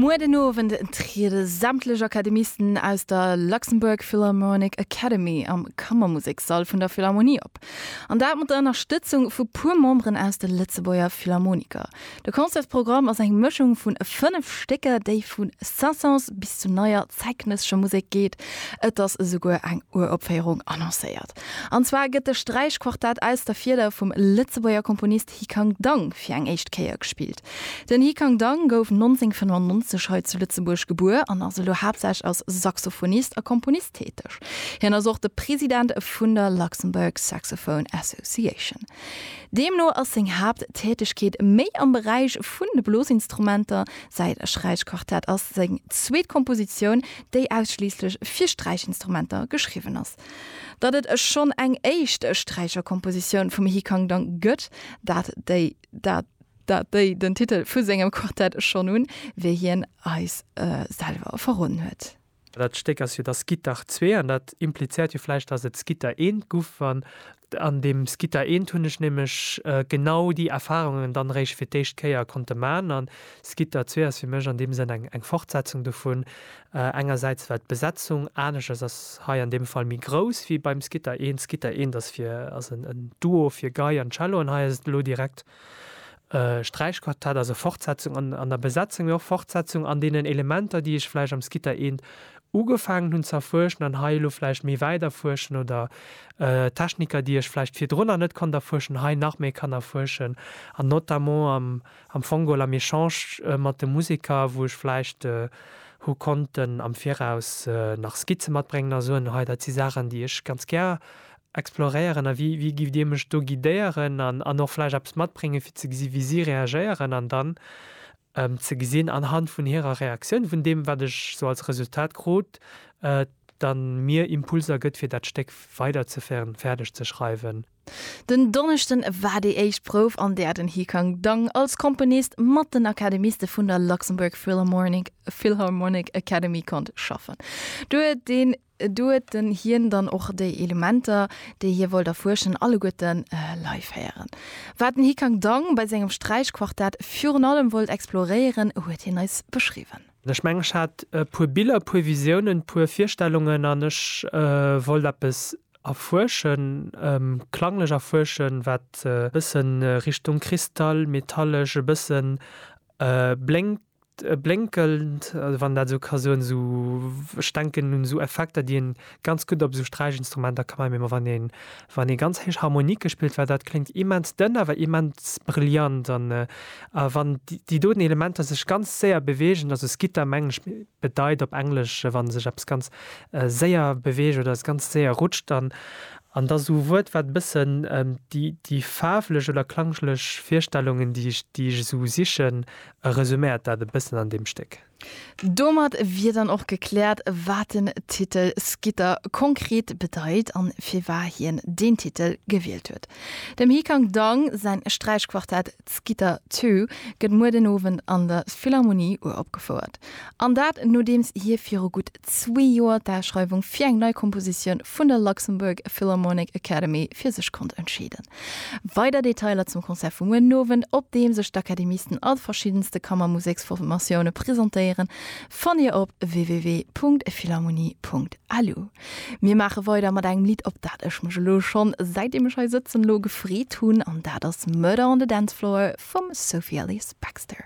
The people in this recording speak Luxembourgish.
Muer den Owend triede sämtlech Akademisten aus der Luxembourg Philharmonic Academy am Kammermusekssall vun der Philharmonie op. An dat mat der Ënnerstëtzung vu puer Memberen aus de Lëtzebuerger Philharmoniker. De Concertsprogramm ass eng Mëschung vun 5 Stécker, déi vu Saint-Saëns bis zu neier zäitgenëssescher Musek geet. Et ass esouguer eng Uropféierung annoncéiert. An zwar gëtt de Sträichquartett aus der Fieder vum Lëtzebuerger Komponist, Hi Kang Dang fir eng éischt Kéier gespillt. Den Hi Kang Dang gouf 1995 hei zu Lëtzebuerg gebuer an ass elo haaptsächlech als Saxophonist a Komponist täteg. Hien ass och de President vun der Luxembourg Saxophone Association. Deemno ass seng Haapttätegkeet méi am Beräich vun de Blosinstrumenter. Säi Sträichquartett ass seng zweet Kompositioun, déi ausschliisslech fir Sträichinstrumenter geschriwwen ass. Datt et e schonn eng éischt Sträicherkompositioun vum He Kang Dang gëtt, dat déi dat dat déi den Titel vu sengem Quartett schonn hunn, wéi hien eis selwer verroden huet. Well dat Stéck ass jo da Skittach zwee an dat implizéiert jo vläicht, datt et Skitter eent guff, wann An deem Skitta eent hunn ech nämlech genau déi Erfahrungen dann eréischt fir d'éischt Kéier konnte man. An Skitta zwee ass fir mech an deem Sënn eng Fortsetzung dovun. Engersäits well d'Besetzung aneschters ass, hei an deem Fall méi grouss wéi beim Skitta eent. Skitta eent ass fir ass en Duo fir Gei an Cello an hei ass et elo direkt Sträichquartett ass e Fortsetzung an an der Besetzung, mee och Fortsetzung an deenen Elementer, déi ech vläicht am Skitta eent ugefaangen hunn ze erfuerschen an hei elo vläicht méi wäit erfuerschen oder Techniker, déi ech vläicht virdrunner net konnt erfuerschen, hei nach méi kann erfuerschen an notamment am am Fongol am Echange mat de Museker, wou ech vläicht hu konnten am Viraus nach Skizze matbréngen a soen, hei dat si Saachen, déi ech ganz gär exploréieren a wéi wéi giff Dir mech do guidéieren an an och vläicht eppes matbréngen fir ze gesi wéi si reagéieren an dann ze gesinn anhand vun hirer Reaktioun vun deem wat ech sou als Resultat krut dann mir Impulser gëtt fir dat Stéck weider ze féieren fäerdeg ze schreiwen. Den Donneschden war déi éischt Prouf an där den Hikang Dang als Komponist mat den Akademiste vun der Luxembourg Philharmonic Academy konnt schaffen. Do huet den. Do huet en hien dann och déi Elementer, déi hie wollt erfuerschen, alleguerte live héieren. Wat den Hikang Dang bei sengem Sträichquartett virun allem wollt exploréieren, huet hien eis beschriwwen. Ech mengen, ech hat e puer Biller, e puer Visiounen, e puer Virstellungen an ech wollt eppes erfuerschen, klanglech erfuerschen, wat e bësse Richtung Kristall, metallesch, e bësse blénkt. blénkend, wann een dat esou ka soen, esou, ech denken un esou Effekter, déi een ganz gutt op esou Sträichinstrumenter ka maachen, mä wann een, wann ee ganz héich Harmonike spillt, well dat kléngt immens dënn, awer immens brillant an wann déi doten Elementer sech ganz séier beweegen, also skitter mengen ech bedeit op Englesch, wa sech eppes ganz séier beweegt oder s ganz séier rutscht an an da esou e Wuert, wat e bëssen déi, déi faarflech oder klangglech Virstellungen, déi ech, déi ech esou sichen, E resuméiert dat e bëssen an deem Stéck. Domat wier dann och gekläert, wat den Titel Skitter konkret bedeit an firwar hien deen Titel gewielt huet. Dem Hikang Dang säin Sträichquartett Skitter Two gëtt muer den Owend an der Philharmonie uropgefouert. An dat nodeems hie viru gutt zwee Joer d'Aschreiwung fir eng nei Kompositioun vun der Luxembourg Philharmonic Academy fir sech konnt entscheeden. Weider Detailer zum Concert vu muer den Owend, op deem sech d'Akademisten a de verschiddenste Kammermuseksformatioune presentéieren, fannt Dir op www.philharmonie.lu. Mir maache weider mat engem Lidd, op dat ech mech elo schonn, säitdeem ech hei sëtzen, elo gefreet hunn, an dat ass Murder on the Dance Floor vum Sophie Ellis-Bextor.